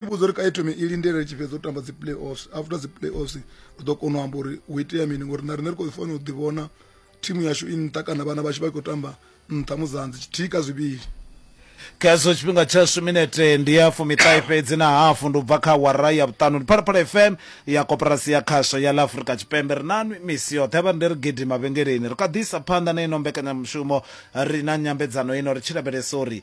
vhudza uri kha i thome i lindele ri tshi fhedza u tamba dzi play offs after dzi play offs ri ḓo kona u amba uri hu itea mini ngori na riṋe ri khou fanela u ḓi vhona thimu yashu i nṱha kana vhana vhashu vha khou tamba nṱha muzanzi tshithihi kha zwivhili khezwo tshifhinga tshashu minete ndi ya fumiṱahe fhedzi na hafu ndi u bva kha wara ya vhuṱanu ndi phalaphala fm ya koporasi ya khasho ya ḽa afurika tshipembe ri na misi yoṱhe vha ri ndi ri gidi mavhengeleni ri kha ḓisa phanḓa na ino mbekanyamushumo ri na nyambedzano ino ri tshi lavhelesa uri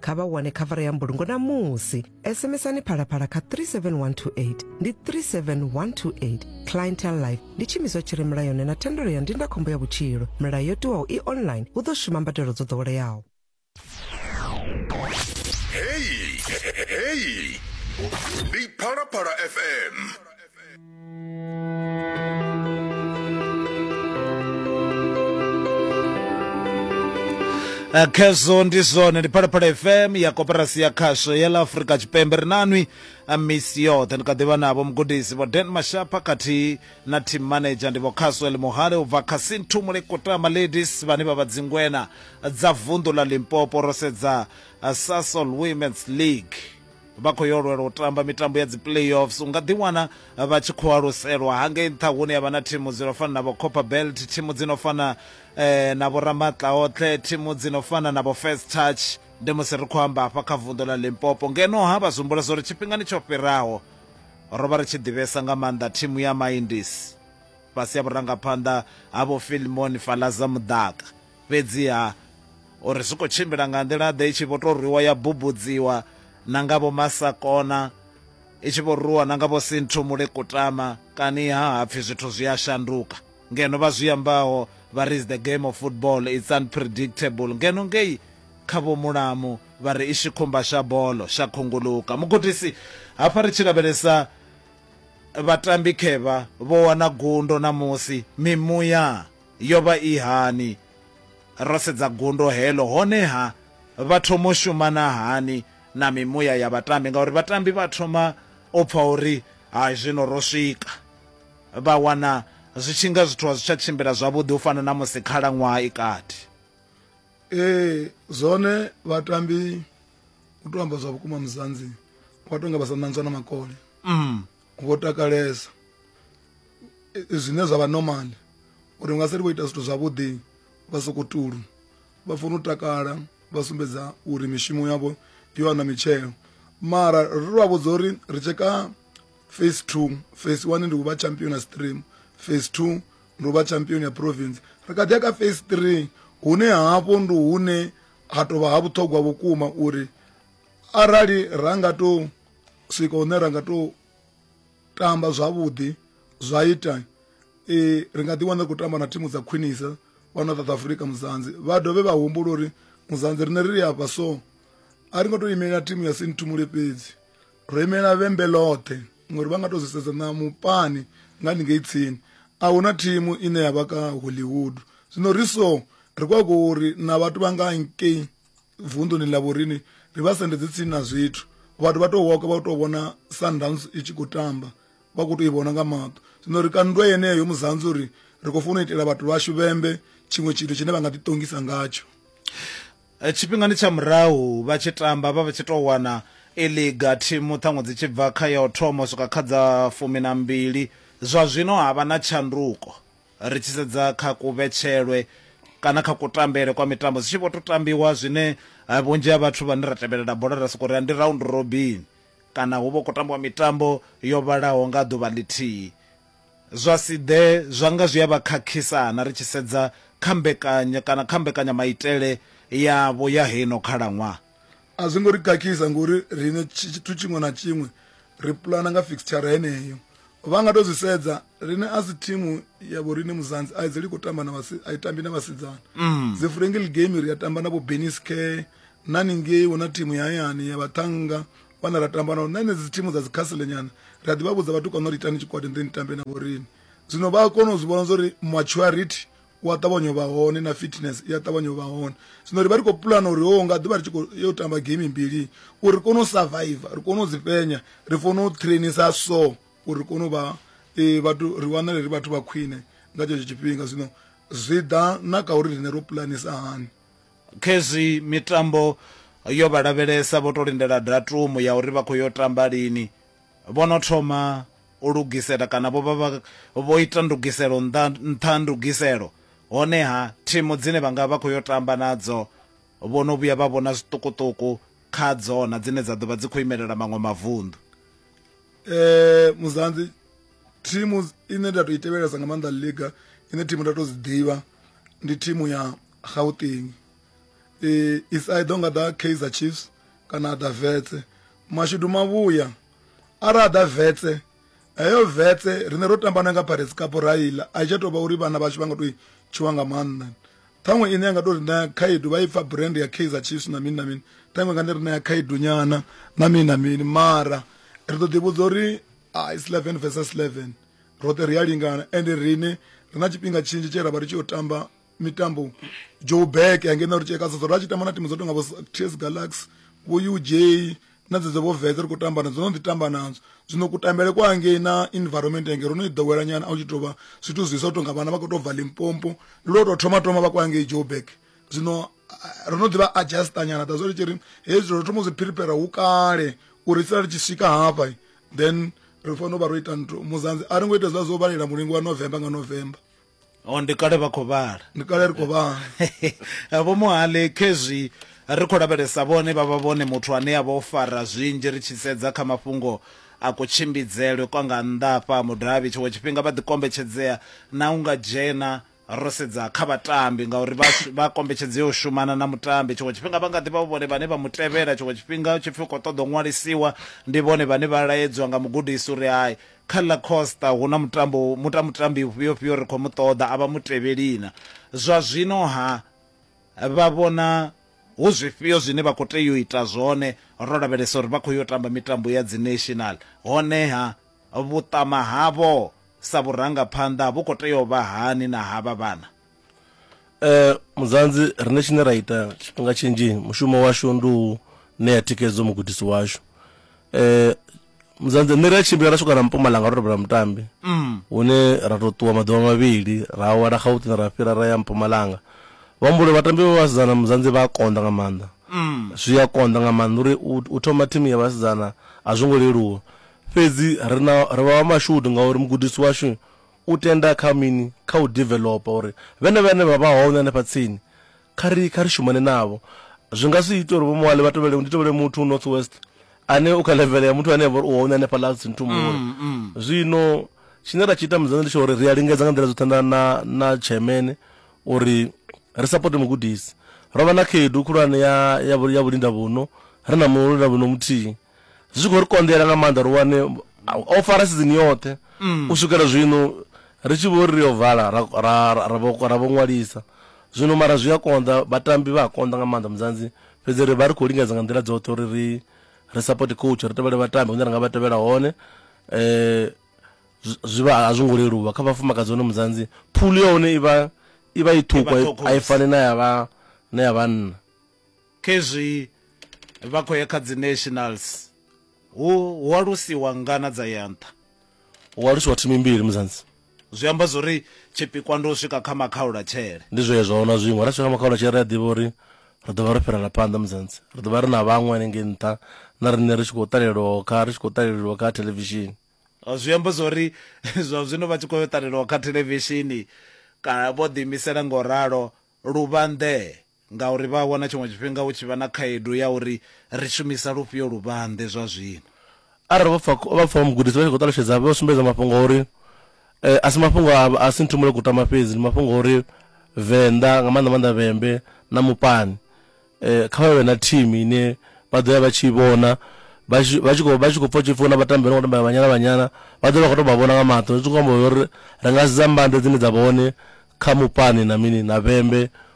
kha vha wane khavara ya mbulungo na musi sms-ani phalaphala kha 37128 ndi 37128 clientel life ndi tshimiswa tshi re mulayoni na thendelo ya ndindakhombo ya vhutshilo milayo yo tiwaho i online hu ḓo shuma mbadelo dzo ḓoweleaho Hey, hey, hey. Big Phala Phala FM. Eh, khezwo ndi zwone ndi phalaphala fm ya koperasi ya khasho ya la afurika tshipembe ri nanwi a misi yoṱhe ndi kha ḓivha navho mugudisi vho den mashapa khathihi na team manager ndi vho caswell muhale u bva kha sinthumule kutama ladies vhane vha vha dzingwena dza vunḓu la limpopo ro sedza eh, sasol women's league vha khou yo lwela u tamba mitambo ya dzi playoffs u nga ḓiwana vha tshi khou aluselwa hangei nṱha hune ya vha na thimu dzi no fana na vho copper belt thimu dzi no fana eh, na vho ramatla oṱhe thimu dzi no fana na vho first touch ndi musi ri khou amba hafha kha vunḓu ḽa limpopo ngeno ha vha zwihumbula zwa uri tshifhingani tsho fhiraho ro vha ri tshi ḓivhesa nga maanḓa thimu ya mindis fhasi ya vhurangaphanḓa ha vho filmon falaza mudaka Fhedziha, o ri zwi khou tshimbila nga nḓila-ḓe i tshi vho tou rwiwa ya bubudziwa na nga Vho Masakona, i tshi vho rwiwa na nga Vho Sinthumule Kutama, kani-ha ha pfi zwithu zwi a shanduka. Ngeno vha zwi ambaho vha ri is the game of football, it's unpredictable. Ngeno ngei kha Vho Mulamu vha ri i shikhumba sha bolo, sha khunguluka. Mugudisi, Hafha ri tshi lavhelesa vhatambi khevha vho wana gundo ṋamusi, mimuya? Yo vha i hani? Ro sedza gundo heḽo, honeha vha thoma u shumana hani na mimuya ya vhatambi, ngauri vhatambi vha thoma u pfa uri hai zwino ro swika. Vha wana zwi tshi nga zwithu a zwi tsha tshimbila zwavhuḓi u fana na musi khalaṅwaha i kati. Ee, zwone vhatambi u tou amba zwa vhukuma Muzanzi vha tou nga vha sa ṋanzwa na makole. Mm. vho takalesa zwine zwa vha normal uri nga seli vho ita zwithu zwavhuḓi vha soko tulu vha funa u takala vha sumbedza uri mishumo yavho yo wana mitshelo mara ri vha vhudza uri ri tsheka phase two phase one ndi u vha champion ya stream phase two ndi u vha champion ya province ri kha ḓi ya kha phase three hune hafho ndi hune ha tovha ha vhuṱhogwa vhukuma uri arali ra nga to swika hune ra nga tou tamba zwavhuḓi zwa ita um ri nga ḓi wana ri khou tamba na thimu dza khwinisa fhano south africa muzanzi vha dovhe vha humbula uri muzanzi rine ri ri afha so a ri ngo tou imelela thimu ya sinthumule fhedzi ro imelela vhembe ḽoṱhe ngori vha nga tou zwi sedza na mupani nga ningei tsini a hu na thimu ine ya vha ka hollywood zwino ri so ri kwa kho uri na vhathu vha nga nkei vunḓuni ḽa vhorini ri vha sendedzi tsini na zwithu vhathu vha tou woka vha tou vhona sundowns i tshi khou tamba vha khou tou i vhona nga maṱo zwino ri kandwa yeneyo muzanzi uri ri khou funa u itela vhathu vhashu vhembe tshiṅwe tshithu tshine vha nga ḓiṱongisa ngatsho eh, tshifhingani tsha murahu vha tshi tamba vha vha tshi tou wana i liga thimu ṱhaṅwe dzi tshi bva kha ya u thoma u swika kha dza fumi na mbili zwa zwino ha vha na tshanduko Ri tshi sedza kha kuvhetshelwe kana kha kutambele kwa mitambo zwi tshi vho tou tambiwa zwine vhunzhi ha vhathu vhane ra tevhelela bola ra sokou ri ndi round robin kana hu vha hu khou tambiwa mitambo yo vhalaho nga ḓuvha ḽithihi. Zwa si ḓe zwa nga zwi a vha khakhisa-na ri tshi sedza kha mbekanya kana kha mbekanyamaitele yavho ya heino khalaṅwaha. a zwi ngo ri kakhisa ngori rine tshithu tshiṅwe na tshiṅwe ri pulana nga fixture heneyo vha nga to zwi sedza rine a si thimu ya vho rine muzanzi a idzeli khou tamba na vhasi a i tambi na vhasidzana mm. dzi friendly game ri a tamba na vho benis care na ningei hu na thimu ya hayani ya vhaṱhanga vhana ra tamba nao na enedzi thimu dza dzikhasile nyana ri a ḓi vha vhudza vhatukana uri itani tshikwadi ndi ni tambe na vho rine zwino vha a kona u zwi vhona zwa uri maturity u a ṱavhanya u vha hone na fitness i a ṱavhanya u vha hone zwino ri vha ri khou pulana uri ho nga ḓuvha ri tshi khou yo tamba game mbili uri ri kone u survive ri kone u dzi fhenya ri fanela u trainisa so uri ri kone u vha e, vhathu ri wanale ri vhathu vha khwine nga tshetsho tshifhinga zwino zwi ḓa na kha uri rine ro pulanisa hani khezwi mitambo yo vha lavhelesa vho to lindela datumu ya uri vha khou yo tamba lini Vho no thoma u lugisela kana vho vha vho ita ndugiselo nṱha nṱha ha ndugiselo, honeha thimu dzine vha nga vha khou yo tamba nadzo vho no vhuya vha vhona zwiṱukuṱuku kha dzona dzine dza ḓo vha dzi khou imelela maṅwe mavunḓu. Muzanzi thimu ine nda tou i tevhelesa nga maanḓa ḽiga ine thimu nda tou dzi ḓivha ndi thimu ya Gauteng. is either nga ḓa kaizer chiefs kana a ḓa vetse mashudu mavhuya ara a ḓa vetse heyo vetse rine ro tambana nga pirates cup ra iḽa a i tsha tou vha uri vhana vhashu vha nga tou tshiwa nga maanḓa ṱhaṅwe ine ya nga tou ri ṋea khaedu vha i pfa brand ya kaizer chiefs na mini na mini ṱhaṅwe nga ndi ri ṋea khaedu nyana na mini na mini mara ri ḓo ḓivhudza uri ah, is 11 versus 11 roṱhe ri a lingana ende rine ri na tshifhinga tshinzhi tshe ra vha ri tshi yo tamba mitambo joburg ya ngeno ri tsheka soso ra tshi tamba na timu dzo tonga vho ts galaxy vho uj na dzedzo vho vetse ri khou tamba nadzo no ḓi tamba nadzo zwino kutambele kwa ngei na environment yange ro no i ḓowela nyana a u tshi tou vha zwithu zwiswa u tonga vhana vha khou tou bva limpompo ndi lwo tou thoma thoma vha kwa ngei joburg zwino ro no ḓivha adjusta nyana da zwo ri tshi ri hezwi ro thoma u zwi prepare hu kale uri sala ri tshi swika hafha then ri fanela u vha ro ita nthu muzanzi a ri ngo ita zwa zwo vhalela mulingo wa november nga november o ndi kale vha khou vhala ndi kale ri khou vhala vho muhali khezwi ri khou lavhelesa vhone vha vha vhone muthu ane a vha o fara zwinzhi ri tshi sedza kha mafhungo a kutshimbidzelwe kwa nga nnḓa afha mudavhi tshiṅwe tshifhinga vha ḓi kombetshedzea na u nga dzhena ro sedza kha vhatambi ngauri vha kombetshedzea u shumana na mutambi tshiṅwe tshifhinga vha nga ḓi vha vhone vhane vha mu tevhela tshiṅwe tshifhinga tshipfi u khou ṱoḓa u ṅwalisiwa ndi vhone vhane vha laedzwa nga mugudisi uri hai Kha ḽa Costa hu na mutambo muta mutambi ufhio-fhio ri khou mu ṱoḓa a vha mutevheli-na? Zwa zwino-ha, vha vhona hu zwifhio zwine vha khou tea u ita zwone ro lavhelesa uri vha khou yo tamba mitambo ya dziNational? Hone-ha, vhuṱama havho sa vhurangaphanḓa vhu khou tea u vha hani na havha vhana? Eh muzanzi rine tshine ra ita tshifhinga tshinzhi mushumo washu ndi u ṋea thikhedzo mugudisi washu. Eh muzanzi nṋe ri a tshimbila ra swika na Mpumalanga ro rabela mutambi hune ra to ṱuwa maḓuvha mavhili ra awela Gauteng ra fhira ra ya Mpumalanga. Vha amba uri vhatambi vha vhasidzana muzanzi vha a konḓa nga maanḓa. Zwi a konḓa nga maanḓa uri u thoma thimu ya vhasidzana a zwo ngo leluwa fhedzi ri na ri vha vha mashudu ngauri mugudisi washu u tenda kha mini? Kha u developer uri vhenevho vhane vha vha hone hanefha tsini kha ri kha ri shumane navho. Zwi nga si ite uri vho Moale vha tovhele ndi tovhele muthu u North West ane u kha level ya muthu ane vha uri u hone hanefha ḽa tsini thumbuni. Zwino tshine ra tshi ita mudzana ndi tsho uri ri a lingedza nga nḓila dzoṱhe na na na chairman uri ri support mugudisi. Rovha na khaedu khulwane ya ya ya vhulinda vhuno ri na mulindavhuno muthihi. zwi khou ri konḓela nga maanḓa ri wane o fara sizini yoṱhe mm. u swikela zwino ri tshi vho ri ri yo vala ra vho ṅwalisa zwino mara zwi a konḓa vhatambi vha a konḓa nga maanḓa muzanzi fhedzi ri vha ri khou lingedza nga nḓila dzoṱhe uri ri ri support coach ri tevhele vhatambi hune ra nga vha tevhela hone um zwi vha a zwi ngo leluwa kha vhafumakadzi hone muzanzi phulu ya hone i vha i vha i ṱhukwa a i fani na ya vha na ya vhanna Khezwi vha khou ya kha dzi nationals hu hu alusiwa ngana dza ya nṱha. Hu alusiwa thimu mbili Muzanzi. Zwi amba zwori tshipikwa ndi u swika kha makhaulatshele. Ndi zwezwo a huna zwiṅwe ra swika kha makhaulatshele ri a ḓivha uri ri ḓo vha ro fhirela phanḓa Muzanzi. Ri ḓo vha ri na vhaṅwe hanengei nṱha na riṋe ri tshi khou ṱalelwaho kha ri tshi khou ṱaleleliwa kha thelevishini. Zwi amba zwori zwa zwino vha tshi khou yo ṱalelwa kha thelevishini kana vho ḓiimisela nga u ralo Luvhanḓe. Ngauri vha a wana tshiṅwe tshifhinga hu tshi vha na khaedu ya uri ri shumisa lufhio luvhanḓe zwa zwino. Arali vho pfa, vha pfa mugudisi vha tshi khou ṱalutshedza, vha sumbedza mafhungo a uri a si mafhungo a, a si Nthumulo Kutama fhedzi, ndi mafhungo a uri Venḓa, nga maanḓa maanḓa Vhembe na Mupani, kha vha vhe na thimu ine vha ḓo ya vha tshi i vhona, vha tshi, vha tshi khou, vha tshi khou pfa hu tshi pfi hu na vhatambi vha no khou tambela Banyana Banyana, vha ḓo vha vha khou tou vha vhona nga maṱo. Zwi khou amba zwa uri ri nga sedza mbande dzine dza vha hone kha Mupani na mini, na Vhembe,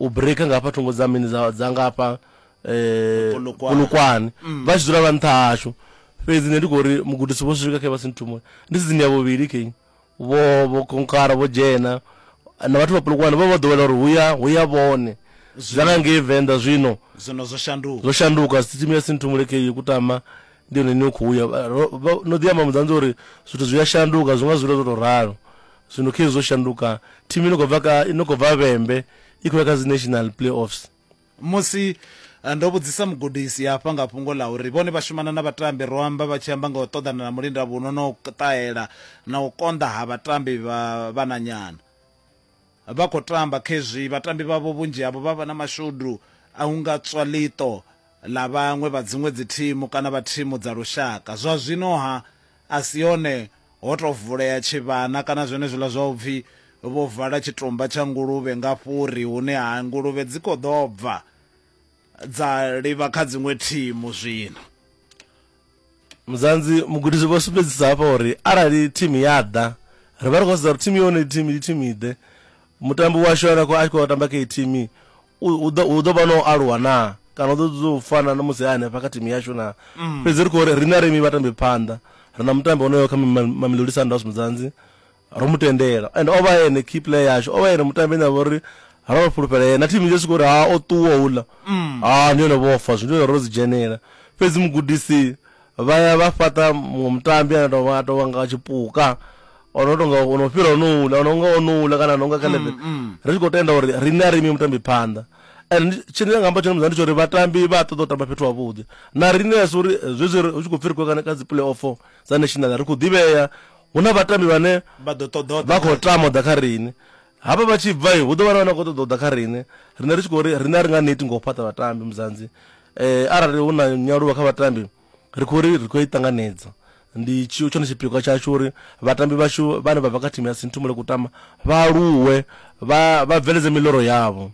u breaker nga hafha thungo dza mini dza dza nga hafha eh Polokwane. Polokwane vha tshi dzula vha nṱha hashu fhedzi nṋe ndi khou ri mugudisi vho swika khe vha si nthumule ndi sizini ya vhuvhili khe vho vho konkara vho dzhena na vhathu vha Polokwane vha vha ḓowela uri huya huya vhone zwa nga ngei Venḓa zwino zwino zwo shanduka zwo shanduka sisitimu ya sinthumule khe yo kutama ndi yone ine u khou ya Vha- ro- vha- no ḓi amba mudzanzi uri zwithu zwi a shanduka zwi nga zwi ita zwo tou ralo Zwino khezwi zwo shanduka. Thimu ino khou bva kha ino khou bva Vhembe i khou ya kha dzi National Playoffs. Musi ndo vhudzisa mugudisi hafha nga fhungo ḽa uri vhone vha shumana na vhatambi, ro amba vha tshi amba nga u ṱoḓana na mulindavhuno na u ṱahela na u konḓa ha vhatambi vha vhananyana vha khou tamba khezwi vhatambi vhavho vhunzhi havho vha vha na mashudu a u nga tswa ḽiṱo ḽa vhaṅwe vha dziṅwe dzithimu kana vha thimu dza lushaka. Zwa zwino-ha, a si hone ho tou vulea tshivhana kana zwenezwiḽa zwa u pfi vho vala tshitumba tsha nguluvhe nga fhuri hune ha nguluvhe dzi khou ḓo bva dza livha kha dziṅwe thimu zwino. Muzanzi mugudisi vho sumbedzisa hafha uri arali thimu ya ḓa ri vha ri khou sedza uri thimu yone thimu ndi thimu iḓe mutambi washu ane a khou khou tamba kha iyi thimu u ḓo vha no aluwa naa kana u ḓo ḓo u fana na musi a hanefha kha thimu yashu naa mm. fhedzi ri khou ri riṋe rimi vhatambi phanḓa ri na mutambi onoyo kha mamelodi sundowns mudzanzi Ro mu tendela and o vha ene key player yashu, o vha ene mutambi ane a vha uri ro vha fhulufhela ene na thimu nnzhi swika uri ha o ṱuwa houḽa ha ndi hone vho fa zwino ro dzi dzhenela. Fhedzi mugudisi vha ya vha fhaṱa muṅwe mutambi ane a tou vha a tou vha nga tshipuka o no tonga o no fhira onouḽa o no nga onouḽa kana a no nga kha level ri tshi khou tenda uri riṋe a ri imi mutambi phanḓa and tshine nga amba tshone muzani tsho uri vhatambi vha ṱoḓa u tamba fhethu havhuḓi na riṋe a si uri zwezwi hu tshi khou pfhi ri khou kana kha dzi play off dza national ri khou ḓivhea hu na vhatambi vhane vha ḓo ṱoḓa vha khou tama u ḓa kha riṋe hafha vha tshi bva hu ḓo vha na vhane vha khou ṱoḓa u ḓa kha riṋe riṋe ri tshi khou ri riṋe a ri nga neti nga u fhaṱa vhatambi muzanzi um arali hu na nyaluwo kha vhatambi ri khou ri ri khou i ṱanganedza ndi tshi tshone tshipikwa tshashu uri vhatambi vhashu vhane vha bva kha thimu ya sinthumule kutama vha aluwe vha vha bveledze miloro yavho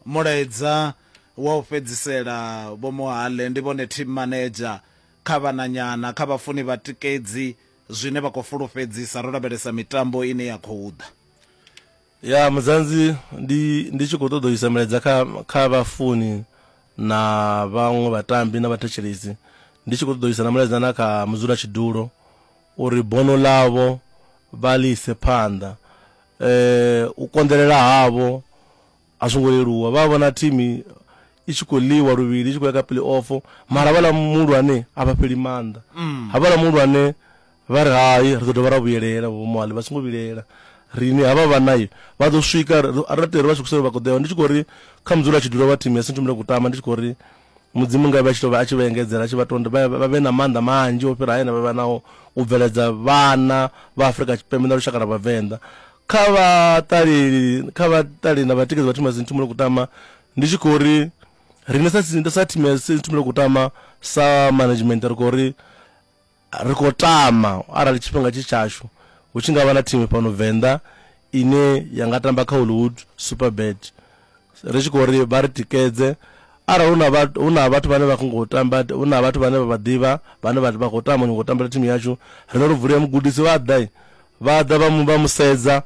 mulaedza wa u fhedzisela vho mohale ndi vhone team manager kha vhananyana, kha vhafuni vhatikedzi zwine vha khou fulufhedzisa ro lavhelesa mitambo ine ya khou ḓa. Ya Mudzanzi ndi ndi tshi khou ṱoḓa u isa milaedza kha kha vhafuni na vhaṅwe vhatambi na vhathetshelesi ndi tshi khou ṱoḓa u isa na mulaedza na kha mudzulatshidulo uri bono ḽavho vha ḽi ise phanḓa u konḓelela havho A zwo ngo leluwa, vha vhona thimu i tshi khou ḽiwa luvhili i tshi khou ya kha peleofu mara havhaḽa muhulwane a vha fheli maanḓa. Havhaḽa muhulwane vha ri hai ri ḓo dovha ra vhuyelela, Vho Moale vha songo vhilaela riṋe havha vhana vha ḓo swika a ri tou ri vha swikise hune vha khou ḓo ya hone. Ndi tshi khou ri kha musi lwa tshi ḓivha vha thimu ya Centurion Kutama ndi tshi khou ri Mudzimu ngavhe a tshi tou vha a tshi vha engedzela a tshi vha tonda vha vha vhe na maanḓa manzhi o fhira haya ane vha vha nao u bveledza vhana vha Afrika Tshipembe na lushaka lwa Vhavenḓa kha vhaṱaleli kha vhaṱaleli na vhatikedzi vha Thimazini Thumulo Kutama ndi tshi khou ri riṋe sa si- sa Thimazini Thumulo Kutama sa management ri khou ri ri khou tama arali tshifhinga tshi tshashu hu tshi nga vha na thimu fhano Venḓa ine ya nga tamba kha Hollywood Superbet ri tshi khou ri vha ri tikedze arali hu na vhathu hu na vhathu vhane vha khou ngo tamba hu na vhathu vhane vha vha ḓivha vhane vha vha khou tama ngo tambela thimu yashu rine ro vulia mugudisi vha ḓa vha ḓa vha mu vha musedza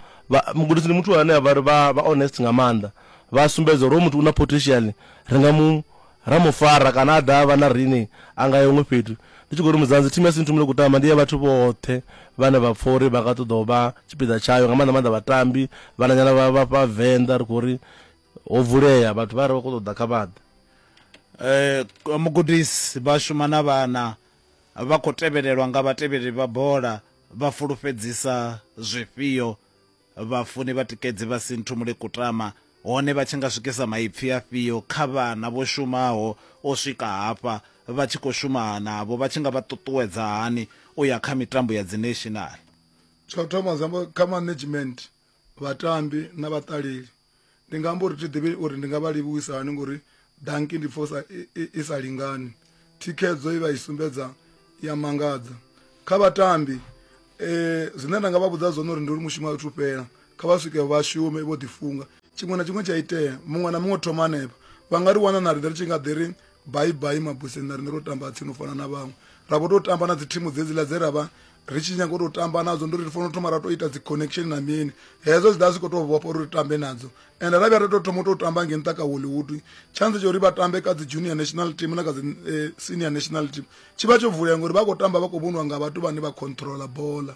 mugudisi ndi muthu ane a vha ri vha vha honest nga maanḓa vha sumbedza uri hoyu muthu u na potential ri nga mu Ra mu fara kana a ḓa a vha na riṋe a nga ya huṅwe fhethu. Ndi tshi khou ri Mudzanzi, thimu ya Sinthumule Kutama ndi ya vhathu vhoṱhe vhane vha pfa uri vha nga ṱoḓa u vha tshipiḓa tshayo, nga maanḓa-maanḓa vhatambi, vhananyana vha vha fha Venḓa. Ri khou ri ho vulea, vhathu vha re vha khou ṱoḓa kha vha ḓe. Mugudisi, vha shuma na vhana, vha khou tevhelelwa nga vhatevheli vha bola, vha fulufhedzisa zwifhio? Vhafuni vhatikedzi vha Sinthumule Kutama, hone vha tshi nga swikisa maipfi afhio kha vhana vho shumaho u swika hafha? Vha tshi khou shuma navho, vha tshi nga vha ṱuṱuwedza hani u ya kha mitambo ya dzineshinala? Tsha u thoma, zwi amba kha management, vhatambi na vhaṱaleli. ndi nga amba uri thi ḓivhi uri ndi nga vha livhuwisa hani ngori danki ndi pfosa i sa lingani thikhedzo i vha i sumbedza ya mangadza kha vhatambi eh zwine nda nga vha vhudza zwone uri ndi uri mushumo a thu fhela kha vha swike vha shume vho ḓi funga tshiṅwe na tshiṅwe tsha itea muṅwe na muṅwe thoma hanefha vha nga ri wana na riṋe ri tshi nga ḓi ri baibai mabuseni na riṋe ro tamba tsini u fana na vhaṅwe ra vho tou tamba na dzi thimu dzedziḽa dze ra vha ri tshi nyanga u tou tamba nadzo ndi uri ri fanela u thoma ra tou ita dzi connection na mini hezwo zwi ḓa zwi khou tou vhofha uri ri tambe nadzo and ra vhuya ra tou thoma u tou tamba nge nṱha ka hollywood chance tsha uri vha tambe kha dzi junior national team na kha dzi eh, senior national team tshi vha tsho vulea ngori vha khou tamba vha khou vhoniwa nga vhathu vhane vha controla bola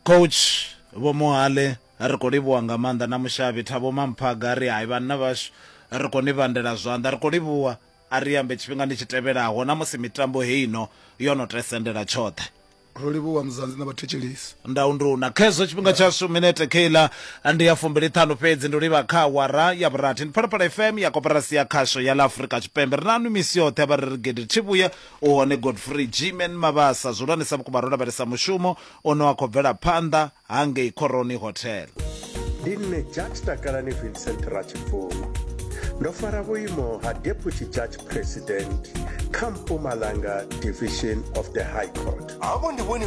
coach vho mohale ri khou livhuwa nga maanḓa na mushavhi thabo mamphaga ri hai vhanna vhashu ri khou ni vhandela zwanḓa ri khou livhuwa A ri ambe tshifhingani tshi tevhelaho na musi mitambo heino yo no te sendela tshoṱhe. Ro livhuwa Muzanzi na vhathetshelesi. Ndau ndi u na khezwo tshifhinga tshashu minete kheiḽa ndi ya fumbiliṱhanu fhedzi ndi u livha kha awara ya vhurathi. Ndi Phalaphala FM ya Koporasi ya Khasho ya ḽa Afrika Tshipembe. Ri naṋwi misi yoṱhe vha re ri gede thivhuya u hone Godfrey G-Man Mabasa. Zwihulwanesa vhukuma ro lavhelesa mushumo Ono a khou bvela phanḓa ha ngei Khoroni Hotel. Ndi nṋe Judge Takalani Vincent Ratshibvuma. Ndo fara vhuimo ha Deputy Judge President kha Mpumalanga Division of the High Court. Havho ndi vhone